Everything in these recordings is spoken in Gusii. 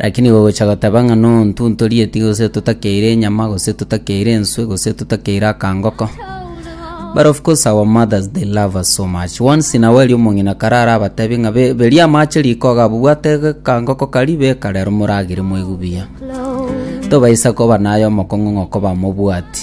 Lakini gogocha goteba ng'a nontuntorieti gose totakeire enyama gose totakeire enswe gose totakeire akangoko but of course our mothers they love us so much once in a while omong'ina kare arabatebie ng'a be- beria amache riko iga abwo bwate akangoko karia beka rero moragere moigwe buya tobaisa koba naye omokong'u ng'a okobamobwati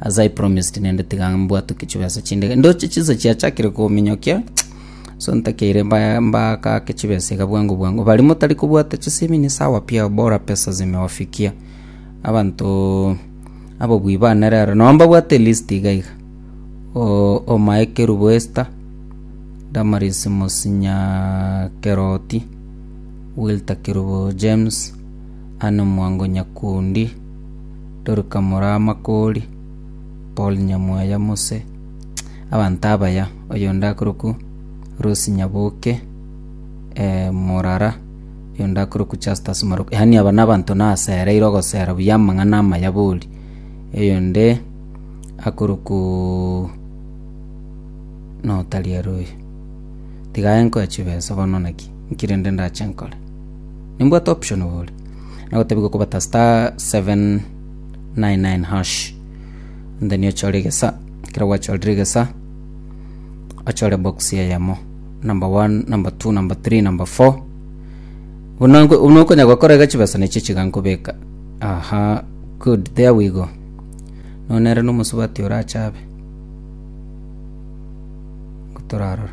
as I promised nende tiga mbwatuke chibesa chinde iga ndoche chinsa chiachakire kominyokia so ntakeire mba- mbakake chibesa iga bwango bwango bari motari kobwata chisemi ni sawa pia bora pesa zimewafikia abanto ababui bane rero nabo mbabwate list iga iga O- omae kerubo Esther Damaris Mosinya Keroti Wilter Kerubo James Anne Mwango Nyakundi, Dorika Moramakori, Paul Nyamwaya Mose, abanto abaya, oyonde akorokwa Rose Nyaboke, Morara, oyonde akorokwa Justus Maroka, yaani aba nabanto nasereire ogosera buya amang'ana amaya bori. Oyonde akorokwa no tari aria oyo. Tiga aye nkoe chibesa bono naki, nki rende ndache nkore? Nimbwate option iga ore. Nagotebiwa kobata star 799 hash. And then ochore egesa. Ekero gwachorire egesa, ochore box eyemo. Number 1, number 2, number 3, number 4. Buna nko- buna okonya gokora iga chibesa nechi chiga nkobeka. Aha, good, there we go. No nere na omosubati orache abe. Ngotorarora.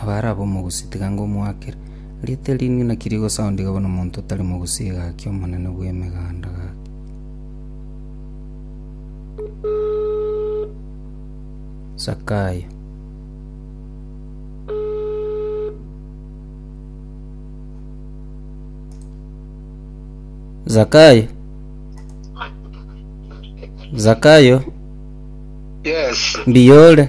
Abare ab'omogusi tiga ngomoakere. Rieta eri inwe naki rigosaundiga buna omonto otari mogusi egaakia omonene bw'emeganda gake? Zakayo. Zakayo. Zakayo. Yes. Mbiore.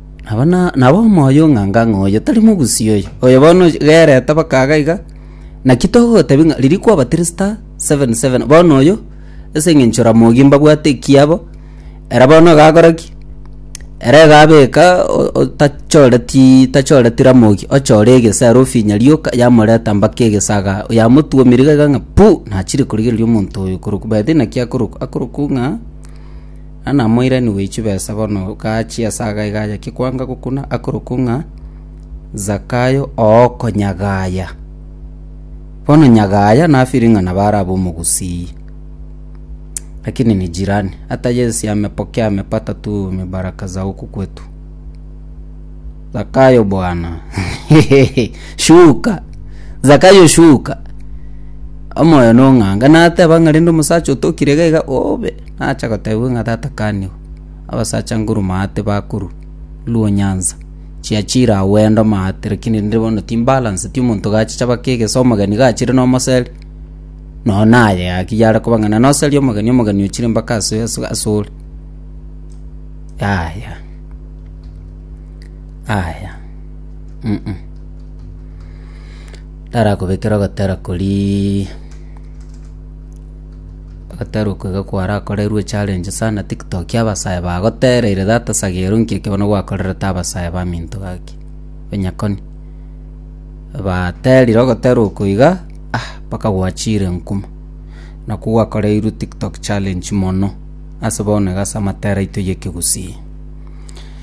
Aba na- nabo omoyo ng'anga ng'a oyo tari mogusii oyo, oyo bono gerete bakaga iga. Naki togotebia ng'a riria kwabatirista seven seven, bono oyo ase eng'encho Ramogi mbabwate ekiabo, ere bono egakora ki? Ere egabeka o- otachoreti tachoreti Ramogi, ochore egesero ofinye rioka yamoreta mpaka egesaga yamotuomire iga iga ng'a pu! nachire korigereria omonto oyo korokwa by the way naki akorokwa akorokwa ng'a. Na namoiranigwe echio besa bono gachia ase agaiga aye kekwanga gokuna akorokwo ng'a Zakayo ooko nyagaya. Bono nyagaya nafiri ng'a nabo arabe omogusii. Lakini ni jirani, hata Yesu amepokea amepata tu mibaraka za huku kwetu. Zakayo bwana shuka zakayo shuka omoyo nong'anga nateba ng'a rende omosacha otokire iga iga obe nacha gotebiwa ng'a tata kanigo abasacha nguru maate bakoru luo nyansa chiachire agwo enda omaate lakini rende bono timbalance ti omonto gachicha baka egeso omogeni gachire nomoseri nonye naye gaki yare koba ng'a nanoseri omogeni omogeni ochire mpaka ase ase ore yaya. Aya. Mm-mm. Tarakobekera ogotera kori ogotera oko iga kwarakorerwe challenge sana tiktok abasae bagotereire that sagero nki eke bono gwakorerete abasae baminto gaki onyakoni baterire ogotera oko iga ah mpaka gwachire nkuma nakwo gwakoreirwe tiktok challenge mono ase bono iga ase amatera aito y'ekegusii.